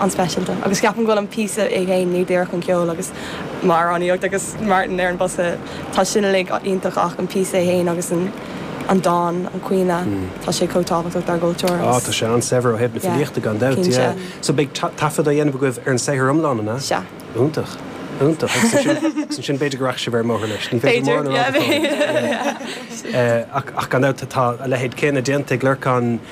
an-speisialta agus ceapaim go bhfuil an píosa é féin, ní díreach an ceol agus m'amhránaíocht agus Martin ar an mbosca, tá sin uilig iontach ach an píosa é féin agus an dán, an caoineadh, tá sé chomh tábhachtach dár gcultúr agus. Á, tá sé an-saibhir ó thaobh na filíochta gan dabht, yeah. Cinnte. So beidh taifead á dhéanamh agaibh ar an saothar iomlán, an ea? Sea. Iontach, iontach agus ansin b'fhéidir go rachaidh sibh ar an mbóthar leis, ní féidir mórán a rá go fóill. B'fhéidir, yeah. Ach gan dabht tá a leithéid céanna déanta ag Lorcán,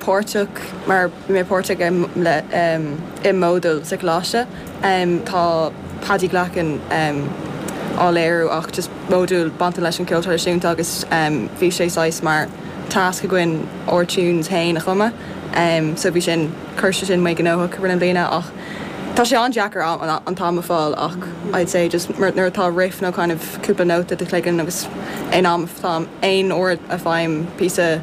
páirteach, mar bhí mé páirteach i Modal sa choláiste, tá Paddy Glackin á léiriú ach just modúl bainte leis an gceol traidisiúnta agus bhí sé saghas mar task againn ár tunes féin a chumadh so bhí sin, chuir sé sin mé gnóthach i rith na bliana ach tá sé an-deacair an t-am a fháil ach I'd say just nuair atá riff nó kind of cúpla nóta i do chloigeann agus in am, aon uair a faighim píosa.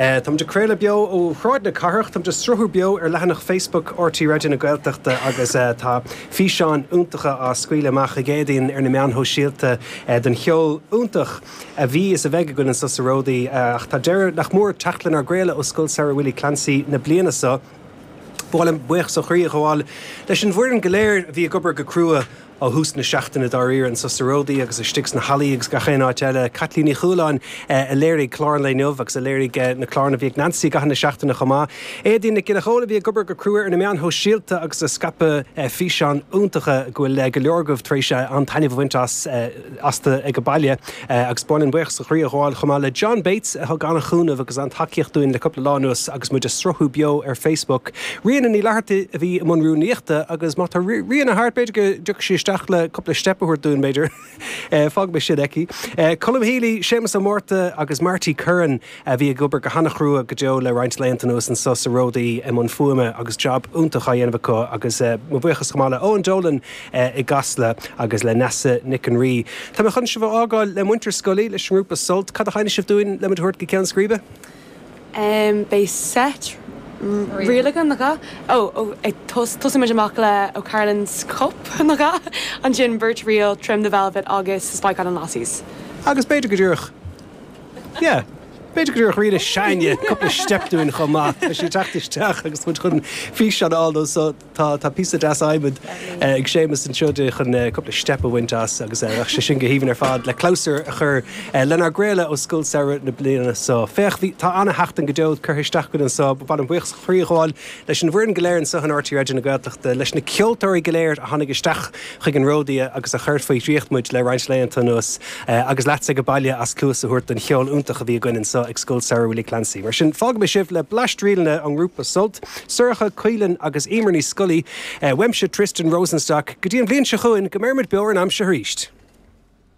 Táimid ag craoladh beo ó Shráid na Cathrach, táimid ag sruthú beo ar leathanach Facebook RTÉ Raidió na Gaeltachta agus tá físeáin iontacha á scaoileadh amach ag Éadaoin ar na meáin shóisialta den gceol iontach a bhí is a bheidh againn anseo sa Ródaí. Ach tá deireadh nach mór ag teacht lenár gcraoladh ó Scoil Samhraidh Willie Clancy na bliana seo. Ba mhaith liom buíochas ó chroí a ghabháil leis an bhfoireann go léir a bhí ag obair go crua Ó thús na seachtaine dáiríre anseo sa Ródaí agus istigh sna hallaí agus gach aon áit eile, Caitlín Ní Chualáin a léirigh clár an lae inniu agus a léirigh na cláranna a bhí ag Nancy i gcaitheamh na seachtaine chomh maith. Éadaoin Nic Giolla Chomhaill a bhí ag obair go crua ar na meáin shóisialta agus ag scaipeadh físeáin iontacha go bhfuil go leor agaibh tar éis an-taitneamh a bhaint as. astu ag an baile. Agus b'áil linn buíochas ó chroí a ghabháil chomh maith le John Bates a thug an-chúnamh agus an-tacaíocht dúinn le cúpla lá anuas agus muid ag sruthú beo ar Facebook. Ríona Ní Fhlathartaigh a bhí i mbun rúnaíochta agus má tá Ríona thart, b'fhéidir go dtiocfaidh sí isteach le cúpla steip a thabhairt dúinn, b'fhéidir. Fágaimis sin aici. Colm Healy, Séamas Ó Mártha agus Marty Curran a bhí ag obair go han-chrua go deo le roinnt laethanta anuas anso sa Ródaí i mbun fuaime agus jab iontach á dhéanamh acu agus mo bhuíochas chomh maith le Eoin Dolan i gCasla agus le Neasa Nic an Rí. Tá mé chun sibh a fhágáil le muintir Scully, leis an ngrúpa Sult. Cad a sheinnfidh sibh dúinn le muid a thabhairt go ceann scríbe? Em, beidh seit ríl againn, nach ea? Ó, ó, ag tos, tosóidh muid amach le O'Carolan's Cup, nach ea? Ansin beirt ríl, Trim the Velvet agus Spike Island Lassies. Agus b'fhéidir go díreach. Yeah. B'fhéidir go dtabharfadh Ríona sin cúpla steip dúinn chomh maith. Tá sí ag teacht isteach agus muid chun físeán a fháil de so tá tá píosa deas adhmaid eh ag Séamus anseo di chun eh cúpla steip a bhaint as agus eh bheadh sé sin go haoibhinn ar fad le clabhsúr a chur eh lenár gcraoladh ó Scoil Samhraidh na bliana so. Féach bhí tá ana-sheachtain go deo curtha isteach againn anso b- ba mhaith liom buíochas ó chroí a ghabháil leis an bhfoireann go léir anso in RTÉ Raidió na Gaeltachta, leis na ceoltóirí go léir a tháinig isteach, chuig an Ródaidhe agus a chur faoi dhraíocht muid le roinnt laethanta anuas agus leatsa ag a baile as cluas a thabhairt don cheol iontach a bhí againn anseo ag Scoil Samhraidh Willie Clancy. Mar sin, fágaimis sibh le bleaist ríleanna ón ngrúpa Sult, Sorcha, Caoileann agus Emer Ní Scolaí, uaimse Tristan Rosenstock, go dtí an bhliain seo chugainn, go mbeirimid beo ar an aimsir arís!